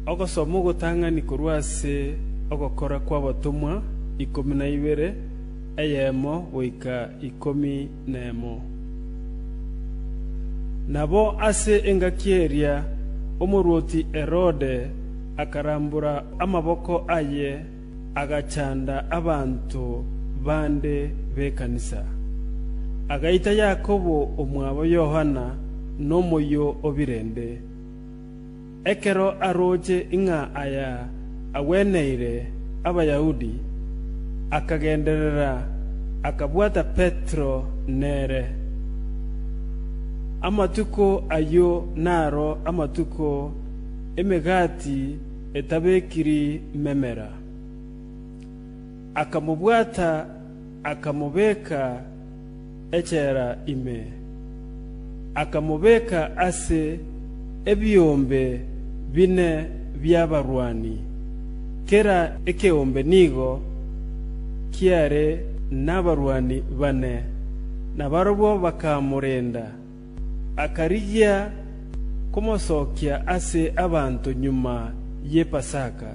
Ogosoma ogotang'ani korwa ase Ogokora kw'Abatomwa ikomi na ibere, eyemo goika ikomi nemo. Nabo ase engaki eria omorwoti Herode akarambora amaboko aye, agachanda abanto bande b'ekanisa. Agaita Yakobo omwabo Yohana nomoyio o birende, Ekero arooche ng'a aya agweneire Abayahudi, akagenderera, akabwata Petero nere. Amatuko ayio naro amatuko Emegati Etabekiri Memera. Akamobwata, akamobeka. echela ime, akamobeka ase ebiombe bine bi'abarwani, kera ekeombe nigo kiare nabarwani bane, nabarabwo bakamorenda. Akarigia komosokia ase abanto nyuma ye Pasaka.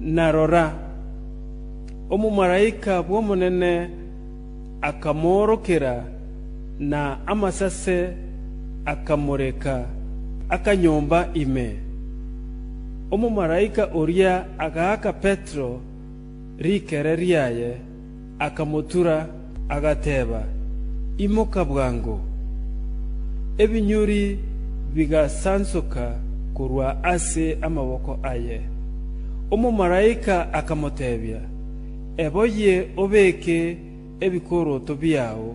na rora, omomalaika bw'Omonene akamoorokera, na amasase akamoreka akanyomba ime. Omomalaika oria agaaka Petero rikere riaye, akamotura, agateba, Imoka bwango! Ebinyuri bigasansoka korwa ase amaboko aye. Omomalaika akamotebia, Eboyie obeke ebikoroto biao.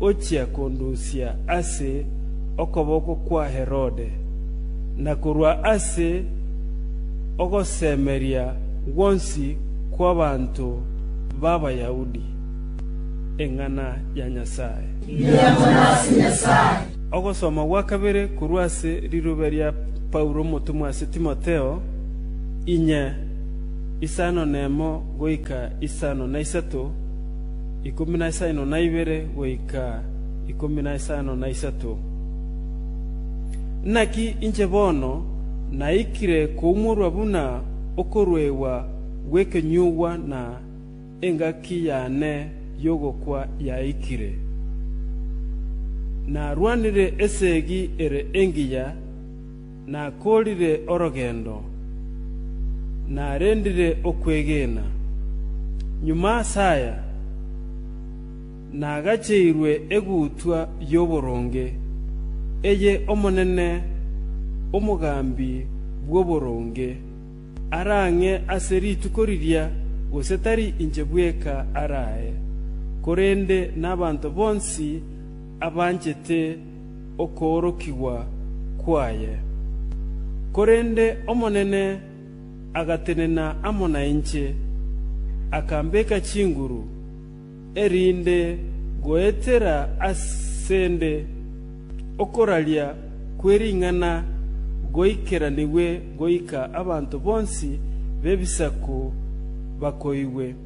ochia kondusia ase okoboko kwa Herode, na korwa ase ogosemeria gwonsi kw'abanto b'Abayahudi eng'ana ya Nyasae. Ogosoma gwa kabere korwa ase rirube ria Paulo omotomwa ase Timotheo, inye, isano nemo goika isano na isato. ikomi na isano na ibere goika ikomi na isano na isato. Naki inche bono naikire koumorwa buna okoruegwa gw'ekenyugwa na engaki yane y'ogokwa yaikire. Narwanire esegi ere engiya, Nakoorire orogendo, narendire okwegena, nyuma as'aya nagacheirwe egutwa y'oboronge, eye Omonene, Omogambi bw'oboronge, arang'e ase rituko riria, gose tari inche bweka arae, korende nabanto bonsi abanchete, okoorokigwa kwaye. Korende Omonene agatenena amo nainche, akambeka chinguru, erinde goetera asende okoraria kwe ring'ana goikeranigwe goika abanto bonsi b'ebisaku bakoigwe.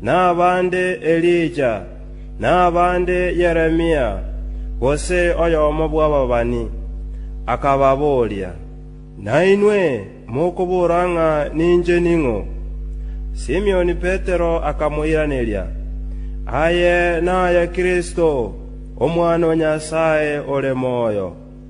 nabande Elija, nabande Yeremia, gose oyomo bw'ababani, akababoria, Nainwe mokobora ng'a ninche ning'o? Simion Petero akamoiraneria, Aye naye Kristo, Omwana o Nyasae ore moyo.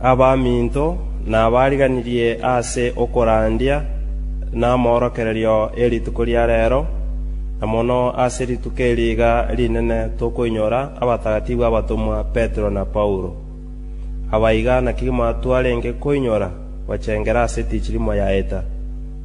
Abaminto nabariganirie ase okorandia namorokererio e rituko ria reero, na mono ase rituko eri iga rinene tokoinyora abatagatifu abatomwa Petero na Paulo. Aba iga naki twarenge koinyora gochengera ase tichirimo yaeta.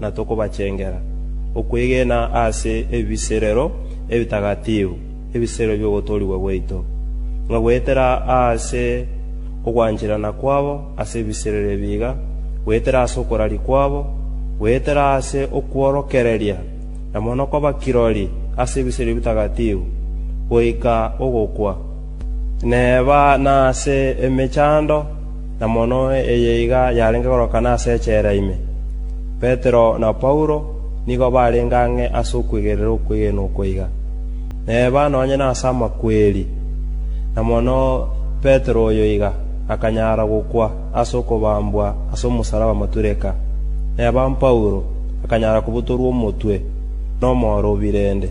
na tokobachengera okwegena ase ebiserero ebitagatifu, ebiserero bi'ogotoorigwa gwaito, ng'a goetera ase ogwancherana kwabo ase ebiserero ebi iga, goetera ase okoraria kwabo, goetera ase okworokereria, na mono koba kirori ase ebiserero ebitagatifu, goika ogokwa. Neba nase emechando, na mono eye iga yarenge korokana ase echela ime. Petero na Paulo nigo barenge ang'e ase okwegena okwegena okwo iga. Neba nonye nase amakweri, na mono Petero oyo iga, akanyara gokwa ase okobambwa ase omosalaba matureka. Neba Paulo akanyara kobutorwa omotwe nomoro o birende.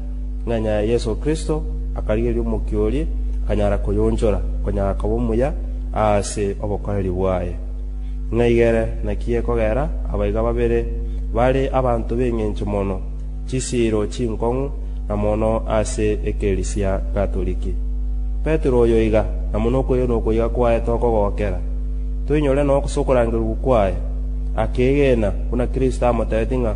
ng'a nyaya Yeso Kristo akarigereria omokia oria, akanyara koyonchora, konya akaba omuya aase obokoreri bwaye. Ng'aiga ere naki ekogera abaiga babere bare abanto b'engencho mono, chisiiro chinkong'u, na mono ase ekerisia Gatoriki. Petero oyo iga, na buna okoyena okoiga kwaye tokogokera, toinyore nokosa okorangerigwa kwaye, akeegena, buna Kristo amotebetie ng'a,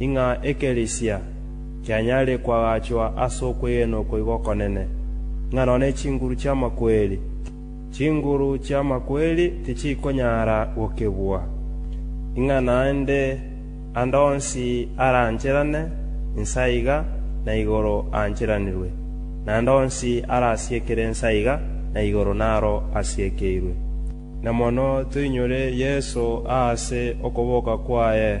ing'a ekerisia kianyare koagachwa ase okwegena oko igo okonene, ng'a nonya ne chinguru chi'amakweri. Chinguru chi'amakweri tichikonyara gokebua, ing'a naende ande onsi arancherane inse aiga na igoro aancheranirwe, na ande onsi arasiekere inse aiga na igoro naro asiekeirwe. Na mono toinyore Yeso aase okoboka kwaye.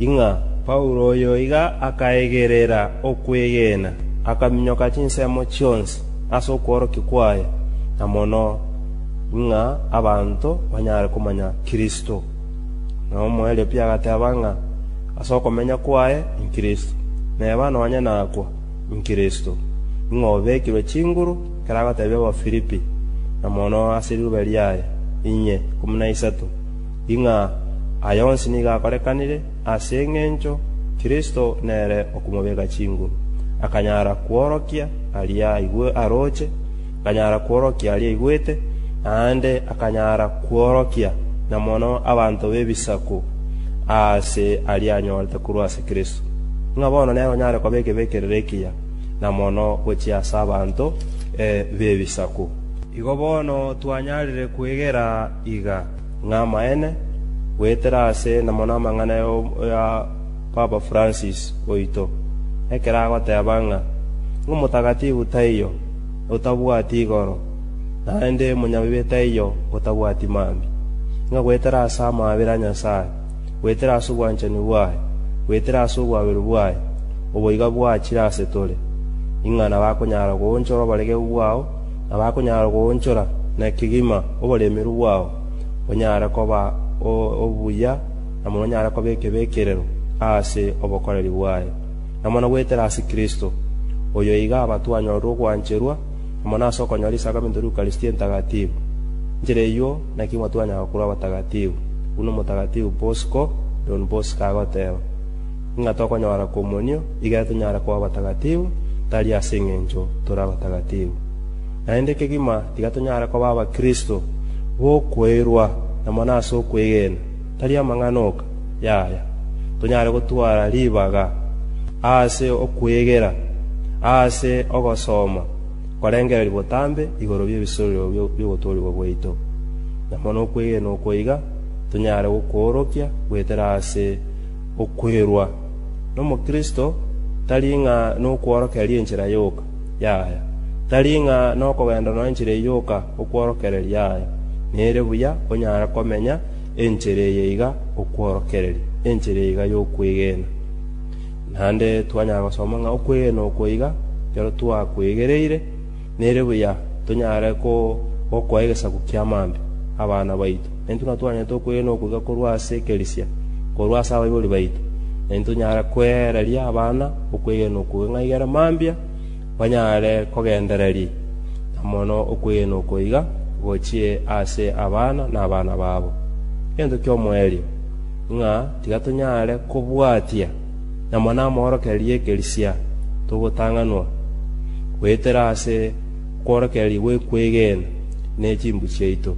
ing'a Paulo oyo iga akaegerera okwegena, akaminyoka chinsemo chionsi ase okworokia kwaye, na mono ing'a abanto banyare komanya Kristo. Na omoerio-pia agateba ng'a ase okomenya kwaye n'Kristo, na eba nonya nakwa n'Kristo, ing'a obekirwe chinguru ekero agotebia Abafilipi, na mono ase riroba riaye inye ikomi na isato. Ing'a aya onsi nigo akorekanire, ase engencho Kristo nere okomobeka chinguru, akanyara kworokia aria aroche, akanyara kworokia aria aigwete, naende akanyara kworokia na mono abanto b'ebisaku ase aria anyorete korwa ase Kristo. Ing'a bono nere onyare koba ekebekerero ekiya na mono gochia ase abanto b'ebisaku. Igo bono twanyarire kwegera iga, ng'amaene, goetera aase enamo namang'ana ya Papa Francis oito, ekero agoteba ng'a Omotagatifu taiyo otabwati igoro, naende Omonyabibe taiyo otabwati mambia, ng'a goetera ase amaabera a Nyasae, goetera ase obwanchani bwaye, goetera ase obwaberu bwaye, oboiga bwachire ase tore, ing'ana bakonyara goonchorwa oboregereru bwao, nabakonyara goonchora na kegima oboremeru bwao, onyare koba obuya, na mono onyare koba ekebekerero ase obokoreri bwaye, na mono goetera ase Kristo, oyo iga abatwanyorire ogwancherwa, na mono ase okonyora risaga minto ri'Eukaristia Entagatifu. Nchera eyio naki mwatwanyara korwa abatagatifu, buna Omotagatifu Bosco, Don Bosco, agoteba. ng'a tokonyora komonio, igere tonyare koba abatagatifu, tari ase engencho tore abatagatifu. Naende kegima tiga tonyare koba Abakristo b'okweirwa na mono ase okwegena, tari amang'ana oka, yaya, tonyare gotwara ribaga aase okwegera aase ogosoma korengereria botambe igoro bi'ebisorero bi'ogotoorigwa gwaito, na mono okwegena oko iga tonyare gokoorokia goetera aase Okwerwa nomokristo tari ng'a nokworokereria enchera yoka yaye, tari ng'a nokogenda nonya enchera eye yoka okworokereria aye. Nere buya onyare komenya enchera eye iga okworokereria, enchera eye iga yokwegena. Naende twanyara gosoma ng'a okwegena oko iga ekero twakwegereire, Nere buya tonyare gokoa egesaku kia maambia abana baito, na intwe natwanyete okwegena okoiga korwa ase ekerisia korwa ase abaibori baito, na intwe tonyare kweereria abana okwegena okwo geng'ai gaiga ere mambia, banyare kogendereri na mono okwegena okwo iga gochie ase abana na abana babo. Egento ki'omoerio ng'a tiga tonyare kobwatia na mwanamorokererie ekerisia, togotang'anwa, goetera ase okworokereria gw'ekwegena ne chimbu chiaito,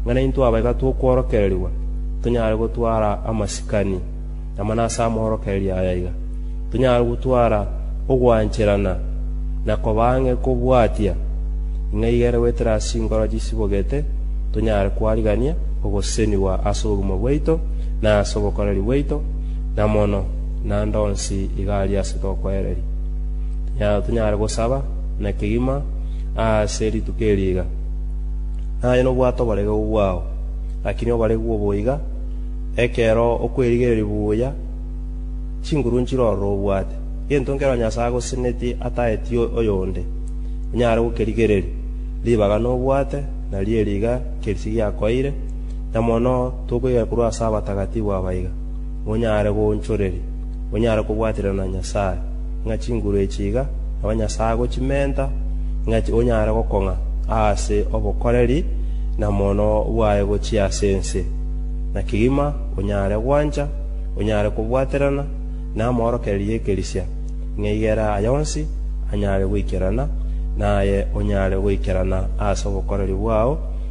ng'a naintwe abaika tokworokererigwa tonyare gotwara amasikani amana ase amorokererio aya iga, tonyare gotwara ogwancherana na koba ang'e kobwatia, ng'a iga ere goetera ase chinkoro chisibogete tonyare kwarigania ogosesenigwa ase obogima bwaito na ase obokoreri bwaito, na mono, naende onsi iga aria ase tokoereria. Tonyare- Tonyare gosaba na kegima aase rituko eri iga, Naye nobwate oboregeru bwao, lakini oboregeru obo iga, ekero okwerigereria buya chinguru nchire ororo obwate, gento nkero Nyasae agosenetie ataeti oyonde, onyare gokerigereria. Ribaga nobwate, nario eri iga kerisi giakoeire, na mono tokoyekorwa ase abatagatifu abaiga, monyare goonchoreria, monyare kobwaterana na Nyasae, ng'a chinguru echi iga nabanyasago chimenta, ng'a onyare gokong'a aase obokoreri na mono bwaye gochia ase ense, na kegima onyare gwancha, onyare kobwaterana namorokererio y'ekerisia, ng'a igera aya onsi anyare goikerana, naye onyare goikerana aase obokoreri bwao,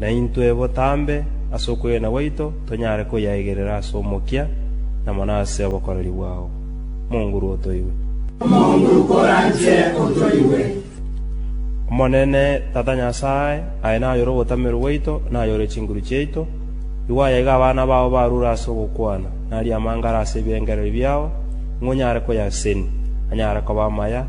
naintwe botambe as'okwegena gwaito tonyare koyaegerera as'omokia na mono ase obokoreri bwao. Monguru otoigwe. Monguru koranche otoigwe. Omonene, Tata Nyasae, aye nayore ogotamerwa gwaito, nayore chinguru chiaito, igo aya iga abana bao barure as'ogokwana, narie amangare as'ebirengererio biao, ng'o nyare koyaseni, anyare koba amaya,